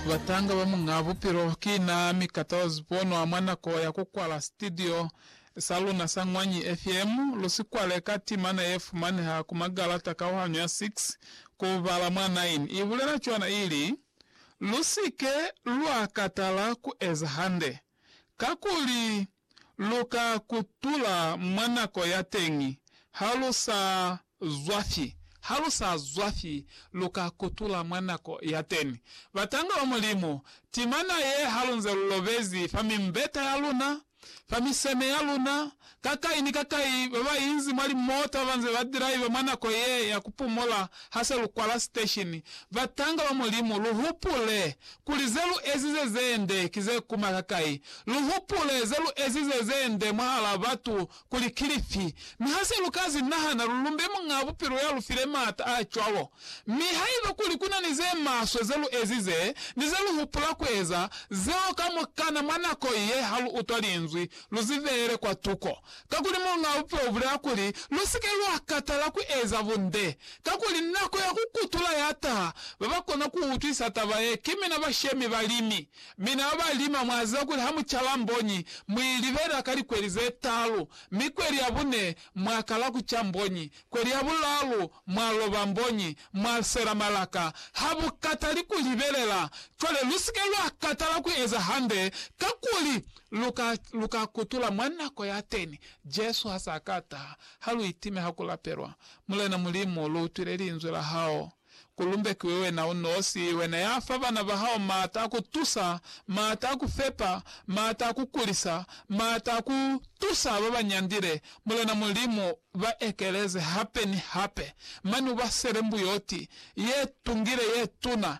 Batanga ba Muñaa Bupilo ki na mi ka Tawaz Bonwa mwa nako ya ku kwala sitidio sa luna sa Ñwanyi FM. Lu si kwale ka timana ye fumaneha ku magalata kauhanyo ya 6 ku bala mwa 9 i bulela cwana ili, Lu si ke lwa katala ku eza hande, kakuli lu ka kutula mwa nako ya teñi, ha lu sa zwa fi, ha lu sa zwa fi, lu ka kutula mwa nako ya teni. Batanga ba Mulimu, timana ye ha lu nze lu lobezi fa mimbeta ya luna, fa miseme ya luna, ka kai ni ka kai, ba ba inzi mwa limoto ba ba nze ba draiva mwa nako ye ya ku pumula ha se lu kwala siteshini, batanga ba Mulimu, lu hupule Kuli ze lu ezize ze nde ki ze kuma kakai, lu hupule ze lu ezize ze nde mwahal'a batu kuli ki lifi, mi ha se lu ka zi nahana, lu lumbe Muñ'a Bupilo ya lu file m'ata a cwalo. Mi haiba kuli ku na ni ze maswe ze lu ezize, ni ze lu hupula ku eza, zeo kamukana mwa nako ye ha lu utwa Linzwi, lu zi beele kwa tuko. Kakuli Muñ'a Bupe ubulea kuli, Lu si ke lwa katala ku eza bunde, kakuli nako ya ku kutula ya taha. Ba ba kona ku utwisa taba ye, ki mina bashemi balimi. Mina ba ba lima, mwa ziba kuli ha mu caba mbonyi, mu i libela ka likweli ze taalu, mi kweli ya bune mwa kala ku ca mbonyi, kweli ya bulaalu mwa loba mbonyi, mwa sela malaka. Ha bu katali ku libelela. Cwale lu si ke lwa katala ku eza hande, kakuli Lu ka, lu ka kutula mwa nako ya teni, Jesu ha sa ka taha, ha lu itime ha ku lapelwa, Mulena Mulimu, lu utwile Linzwi la Hao. Ku lumbekiwe Wena u nosi, Wena ya fa bana ba Hao maata a ku tusa, maata a ku fepa, maata a ku kulisa, maata a ku tusa ba ba nyandile, Mulena Mulimu, ba ekeleze hape ni hape, mane u ba sele mbuyoti ye tungile ye tuna,